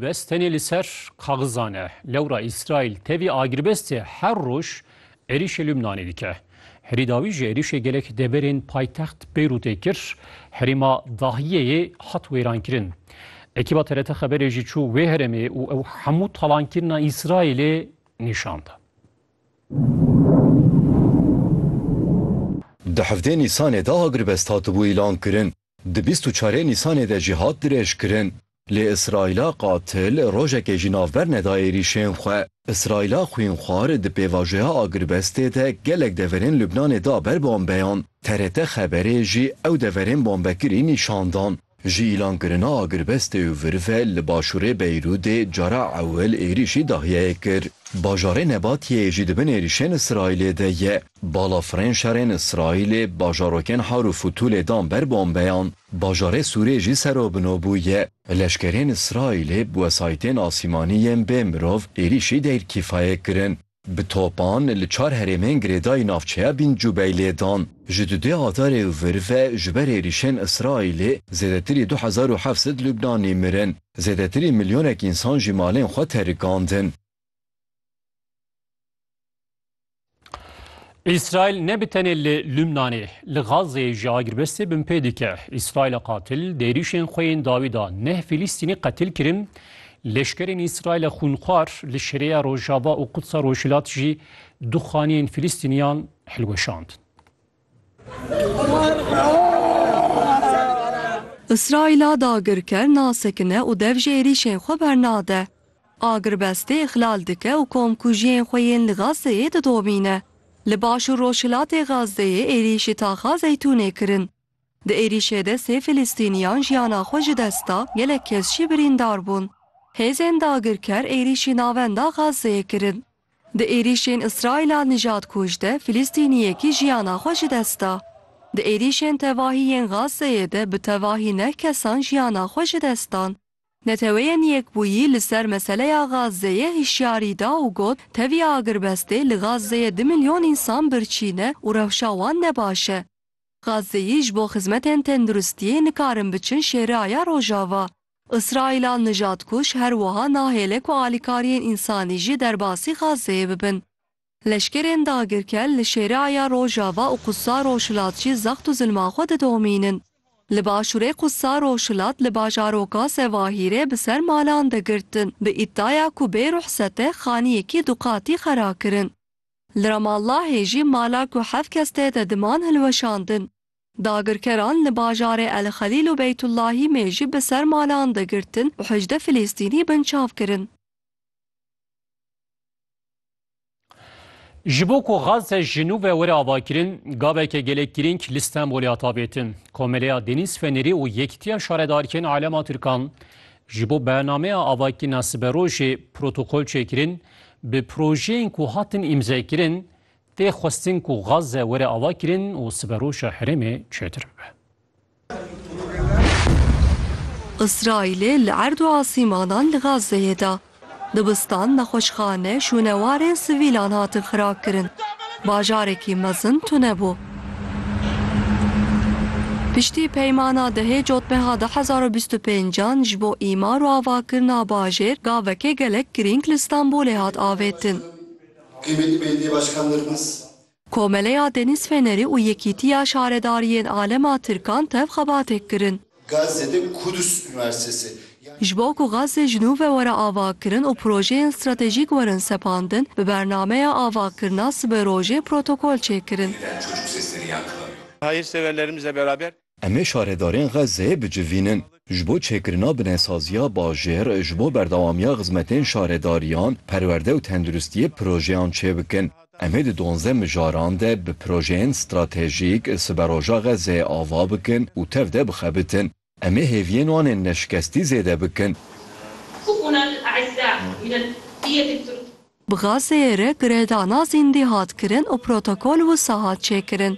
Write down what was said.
Bes tenê li ser kaxizan e. Lewra Îsraîl tevî agirbestê her roj êrîşê Lubnanê dike. Herî dawî ji êrîşê gelek deverên paytext Beyrûtê kir, herêma Dahiyeyê hat wêrankirin. Ekîba TRT Xeberê jî çû wê herêmê û ew hemû talankirina Îsraîlê nîşan da. Di hevdê Nîsanê de agirbest hatibû îlankirin. Di bîst û çarê Nîsanê de jî hat dirêjkirin. Lê Îsraîla qatil rojekê jî navber neda êrîşên xwe. Îsraîla xwînxwar di pêvajoya agirbestê de gelek deverên Lubnanê da ber bombeyan. TRT Xeberê jî ew deverên bombekirî nîşan dan. Ji îlankirina agirbestê û vir ve li başûrê Beyrûdê cara ewil êrîşî dahiyeyê kir. Bajarê Nebatiyeyê jî di bin êrîşên Îsraîlê de ye. Balafirên şerên Îsraîlê bajarokên Har û Fûtûlê dan ber bombeyan, bajarê Sûrê jî serobino bûye. Leşkerên Îsraîlê bi wesayîtên asîmanî yên bê mirov êrîşî Deyr Kîfayê kirin. Bi topan li çar herêmên girêdayî navçeya Bîn Cubeyilê dan. Ji du dê Adarê û vir ve ji ber êrîşên Îsraîlê zêdetirî du hezar û heft sed Lubnanî mirin. Zêdetirî milyonek însan jî malên xwe terikandin. İsrail ne bi tenê li Lübnanê, li Gazê ji agirbestê bin pê dike. İsraila qatil dêrîşên xwe yên dawî da neh Fîlîstînî qetil kirin. Leşkerên İsraila xûnxwar li Şirêya Rojava û Qudsa Rojhilat jî du xaniyên Fîlîstîniyan hilweşandin. Îsraîla dagirker nasekine û dev ji êrîşên xwe bernade. Agirbestê îxlal dike û komkujiyên xwe yên li Gazeyê didomîne. Li baş û rojhilatê Gazeyê êrîşî taxa Zeytûnê kirin. Di êrîşê de sê Filistîniyan jiyana xwe ji dest da, gelek kes jî birîndar bûn. Hêzên dagirker êrîşî navenda Gazeyê kirin. Di êrîşên Îsraîla nijad kûj de Filîstîniyekî jiyana xwe ji dest da. Di êrîşên tevahî yên Gazzeyê de bi tevahî neh kesan jiyana xwe ji dest dan. Neteweyên Yekbûyî li ser meseleya Gazzeyê hişyarî da û got, Tevî agirbestê li Gazzeyê du milyon însan birçî ne û rewşa wan ne baş e. Gazzeyî ji bo xizmetên tenduristiyê nikarin biçin şêraya Rojava. Îsraîla nijadkuj her wiha nahêle ku alîkariyên însanî jî derbasî Gazeyê bibin. Leşkerên dagirker li Şêriaya Rojava û Qudsa Rojhilat jî zext û zilma xwe didomînin. Li başûrê Qudsa Rojhilat li bajaroka Zewahîrê bi ser malan de girtin bi îddiaya ku bê ruhsete xaniyekî du qatî xera kirin. Li Ramallahê jî mala ku heft kes tê de diman hilweşandin. Dagirkeran li bajarê El Xelîl û Beytullahî mêjî bi ser malan de girtin û hejdeh Filîstînî binçav kirin. Ji bo ku Gazze ji nû ve were avakirin, gaveke gelek girîng li Stenbolê hat avêtin. Komeleya Denîz Fenerî û Yekîtiya Şaredariyên Alema Tirkan ji bo bernameya avakirina siberojê protokol çêkirin, bi projeyên ku hatin îmzekirin Tê xwestin ku Gazze were avakirin û siberoja herêmê çêtir bibe. Îsraîlê li erd û asîmanan li Gazzeyê da. Dibistan, nexweşxane, şûnewarên sivîlan hatin xirakirin. Bajarekî mezin tune bû. Piştî peymana dehê cotmeha du hezar û bîst û pênc an ji bo îmar û avakirina bajêr gavekê gelek girîng li Stenbolê hat avêtin. Qîmetî Belediye Başkan Nirmiz. Komeleya Denîz Fenerî û Yekîtiya Şaredariyên Alema Tirkan tev xebatêk kirin. Gazze de Kudüs Üniversitesi ya. Ji bo ku Gazze ji nû ve were avakirin û projeyên stratejîk werin sepandin, bi bernameya avakirina siberojê protokol çêkirin. Em ê şaredarên Xezzeyê bicivînin. Ji bo çêkirina binesaziya bajêr, ji bo berdewamiya xizmetên şaredariyan, perwerde û tenduristiyê projeyan çêbikin. Em ê di duanzdeh mijaran de bi projeyên stratejîk siberoja Xezzeyê ava bikin û tev de bixebitin. Em ê hêviyên wan ên neşikestî zêde bikin. Bi Xezzeyê re girêdana zîndî hat kirin û protokol wisa hat çêkirin.